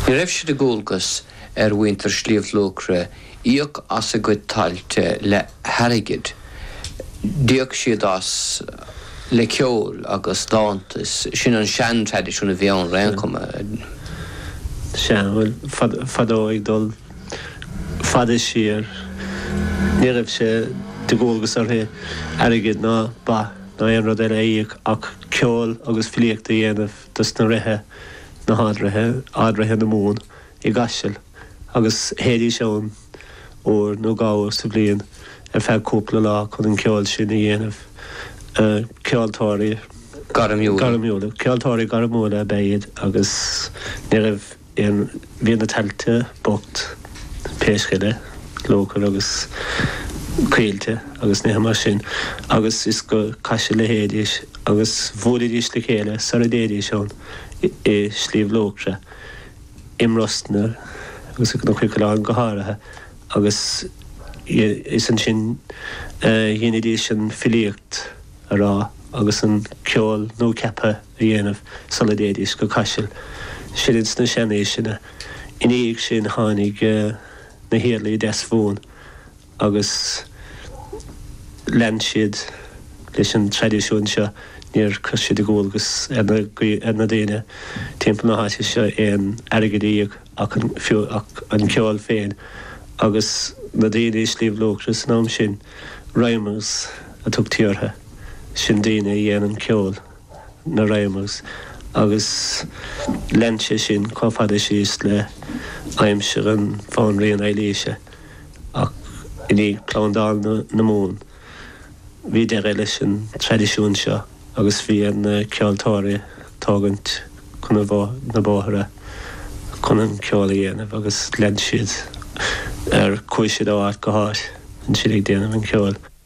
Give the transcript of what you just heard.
Ní raibh sé de dhualgas ar mhuintir Shliabh Luachra íoc as a gcuid tailte le hairgead, d'íoc siad as le ceol agus dánta, is sin an seantraidisiún a bhí ann ar aon chuma. Sea, bhuel, fadó, ag dul fada siar, ní raibh sé de dhualgas orthu airgead ná ba ná aon rud eile a íoc ach ceol agus filíocht a dhéanamh. dos na Ríthe, na hArd-Ríthe, Ard-Ríthe na Mumhan, i gCaiseal, agus théidís ann uair nó dhá uair sa bhliain ar feadh cúpla lá chun an ceol sin a dhéanamh. Ceoltóirí. gairmiúla. Ceoltóirí gairmiúla ab ea iad agus ní raibh. Bhí na tailte bocht, riascaigh, luachair agus coillte agus nithe mar sin agus is go Caiseal a théidís agus bhuailidís le chéile sara dtéidís ann i Sliabh Luachra, i mBrosna agus sna Cnoic Uí Choileáin go háirithe agus is ansin a dheinidís an filíocht. a rá agus an ceol nua-ceaptha a dhéanamh sula dtéidís go Caiseal sin ins na seanaoiseanna. I ndiaidh sin tháinig na hIarlaí Deasmhumhan agus lean siad leis an traidisiún seo. Níor chuir siad de dhualgas ar na daoine timpeall na háite seo aon airgead a íoc. ach an fiú ach an ceol féin agus na daoine i Sliabh Luachra san am sin? Rhymers a tugtaí ortha sin, daoine a dhéanann ceol, na rhymers, agus lean sé sin chomh fada síos le aimsir an Bhanríon Eilíse ach i ndiaidh Phlandáil na Mumhan bhí deireadh leis an traidisiún seo. agus bhí ar na ceoltóirí tógaint chun na bóithre chun an ceol a dhéanamh agus lean siad ar chuaigh siad ó áit go háit an siad ag déanamh an ceoil.